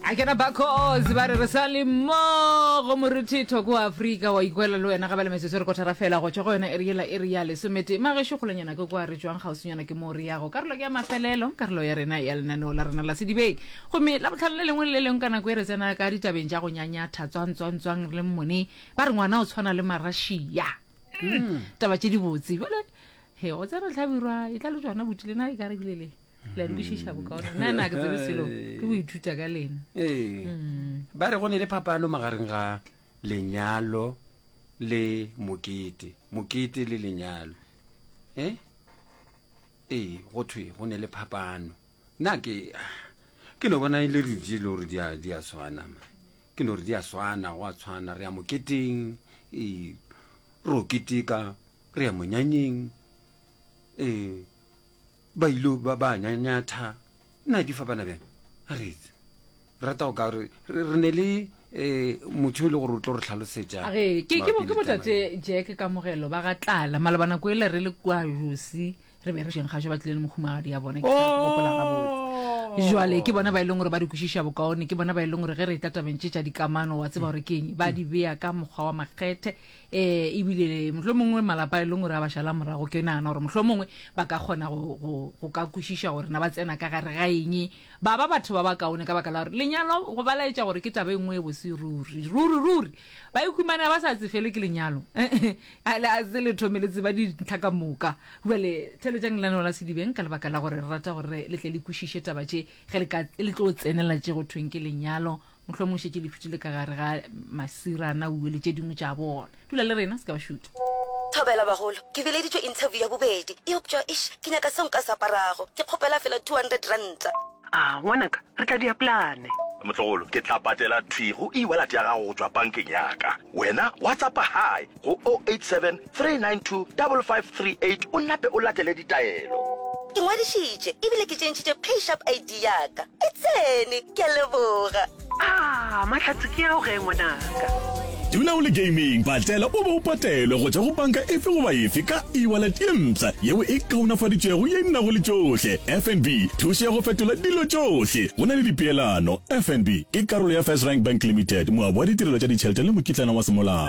a kena bakozi ba re re sa le mmogo moruthi thoko wa afrika wa ikwela le wena gabele metsotso re kotara fela go tšwa go yona eriela e re ya lesomete magešu kgolonyana ke kwa re jwang gausinyana ke moo re yago karolo ke ya mafelelo karolo ya rena ya lenaneo la rena la sedibeng gomme la botlhano le lengwe le le lengwe ka nako e re tsena ka ditabeng tša go nyanyatha tswantswantswang re le mmone ba re ngwana o tshwana le marashia hmm. taba tše dibotse jale he go tsena tlhabirwa e tla le tswana botile na e ka re bile le la di kwešiša bokaone nna na ke tsebe selo ke go ithuta ka lena ee mm. ba re go ne le phapano magareng ga lenyalo le mokete mokete le lenyalo e ee go thwe go ne le phapano nna ke ke no bona e le redi le gore di a tshwana ma ke no re di a tshwana go a tshwana re ya moketeng ee ro keteka re ya monyanyeng ee Ba il'o ba ba nyanyatha, Na ke fa bana bjang? A re etse. Rata go ka gore re, re ne le, eh, motho yo e le gore o tlo re hlalosetša A re, Ke, ke bo, mabapi ke le bo taba Tate ye. Jack Kamogelo ba ga Tlala. Maloba nako yela re le kua Josi, re be re šeng gašo ba tlile le mohumagadi ya bona, ke sa gopola gabotse. Bjale, ke bona ba e leng gore ba re kwešiša bokaone, ke bona ba e leng gore ge re e tatabentšetša dikamano, wa tseba gore ke eng, ba di bea ka mokgwa wa makgethe, ee ebile mohlho mongwe malapa e leng gore a ba šala morago ke nagana gore mohlho mongwe ba ka kgona go ka kwešiša gore na ba tsena ka gare ga eng ba ba batho ba ba kaone ka baka la gore lenyalo go ba laetša gore ke taba e nngwe e bose ruri ruri ruri ba ikhumana ba sa tsefele ke lenyalo a se le thome le tseba dintlha ka moka jale theletšang lenaneo la sedibeng ka lebaka la gore re rata gore le tle le kwešiše taba tše ge le tlo tsenela tše go thweng ke lenyalo mohlomong o šetše lefitile ka gare ga masirana uwe le tše dingwe tša bona dula le rena se ka ba šuta Thobela bagolo, ke bileditšwe interview ya bobedi, eupša eish ke nyaka seo nka se aparago, ke kgopela fela two hundred ranta. Aah ngwanaka, re tla dia plane. Motlogolo, ke tla patela thwi go e-wallet ya gago go tšwa bankeng ya ka. Wena wa tsapa hai? go 087 392 5538 o nape o latele ditaelo. Ke ngwadišitše e bile ke tšentšhitše PaySharp ID ya ka. E tsene! Ke a leboga. Aa, mahlatse ke ao ge, ngwanaka? Dula o le gaming, patlela o be o patelwe go tšwa go banka efe goba efe ka e-wallet ye mpsha yeo e kaonafaditšwego ye e nago le tšohle. FNB, thušo ya go fetola dilo tšohle. Go na le dipeelano. FNB ke karolo ya FirstRand Bank Limited, moabi wa ditirelo tša ditšhelete le mokitlana wa semolao.